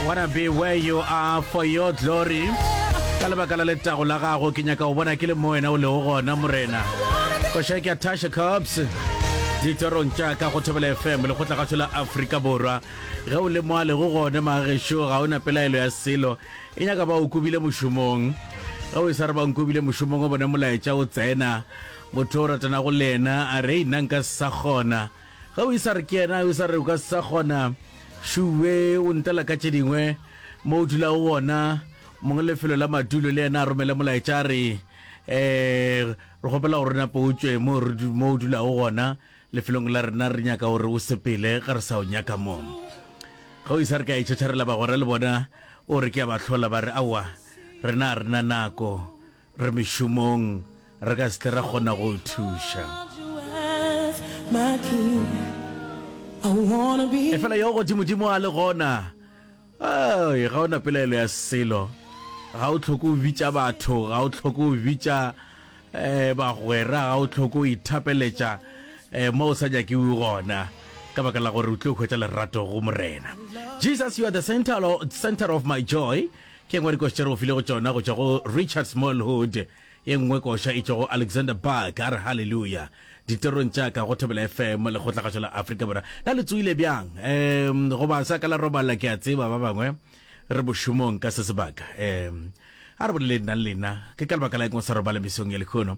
wanna be where you are for your glory ka lebaka la letago la gago ke nyaka go bona ke le mo wena o lego gona morena koša ke a tasha cops ditorong tša ka go thobela fm le kgotla kgatho la aforika borwa ge o le mo a lego gone magešo ga o na pelaelo ya selo e nyaka ba o kobile mošomong ge o e sa re ba nkobile mošomong o bone molaetša o tsena motho o ratanago le yena a re nna nka sa kgona Ge o e sa re ke yena, o sa re o ka se sa kgona, šuwe o ntela ka tše dingwe, mo o dulago gona, mongwe lefelo la madulo le yena a romele molaetša a re, um re kgopela gore nape o tšwe mo o dulago gona, lefelong la rena, re nyaka gore o sepele ge re sa o nyaka mo. Ge o e sa re ke a e tšhatšharela bagwera le bona, o re ke a ba hlola, ba re, Aowa, rena ga re na nako. Re mešomong, re ka se tle ra kgona go o thuša. Efela yo Godimodimo a le gona, Ai, ga o na pelaelo ya selo. Ga o tlhoke o bitša batho, ga o tlhoke o bitša eh, bagwera, ga o tlhoke o ithapeletša eh, mo o sa nyakiwe gona, ka baka la gore o tlo hwetša lerato go Morena. Jesus, you are the center, center of my joy. Ke ngwe ya dikoša tše re go filego tšona go tšwa go Richard Smallwood, ye nngwe koša e tšwa go Alexander Buck, a re Haleluya! Ditirong tša ka go Thobela FM, Lekgotlakgašo la Afrika Borwa. Na le tsoile bjang? Um, goba sa ka la robala, ke a tseba ba bangwe re mošomong ka se sebaka. Um, a re boleleng nna le lena, ke ka lebaka la eng o sa robala mesong ya lekhono?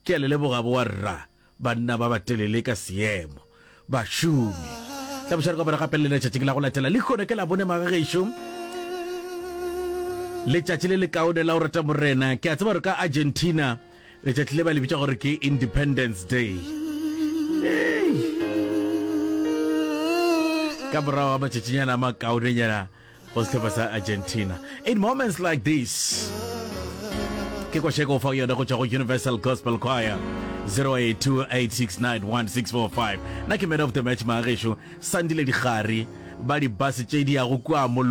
Ke a le leboga boarra, banna ba batelele ka seemo, bašomi. Hlabošwa re kopana gape le lena tšatšing la go latela. Lehono ke Labone, magagešo. Letšatši le lekaone la go rata Morena. Ke a tseba gore ka Argentina letšatši le ba le bitša gore ke Independence Day. Ka morago ga matšatšinyana a makaonenyana, go sehlopha sa argentina in moments like this ke kwasheko fa yone go tšwa go universal gospel choir 0828691645 na ke man of the match maagešo sandile digare ba dibase tše di yago kua mollo